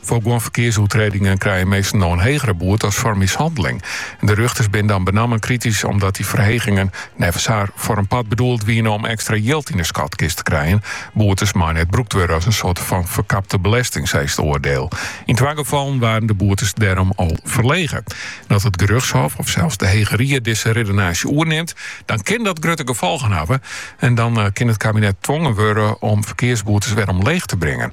Foar guon ferkearsoertredingen krije minsken no in hegere boete as foar mishanneling. De rjochters binne dan benammen kritysk omdat dy ferhegingen, neffens har, foar in part bedoeld wiene om ekstra jild yn 'e skatkist te krijen. Boetes meie net brûkt wurde as in soarte fan ferkapte belesting, sa is it oardiel. Yn twa gefallen waarden de boetes dêrom al ferlege. As it gerjochtshôf of sels de Hege Ried dizze riddenaasje oernimt, dan kin dat grutte gefolgen hawwe en dan kin it kabinet twongen wurde om ferkearsboetes wer omleech te bringen.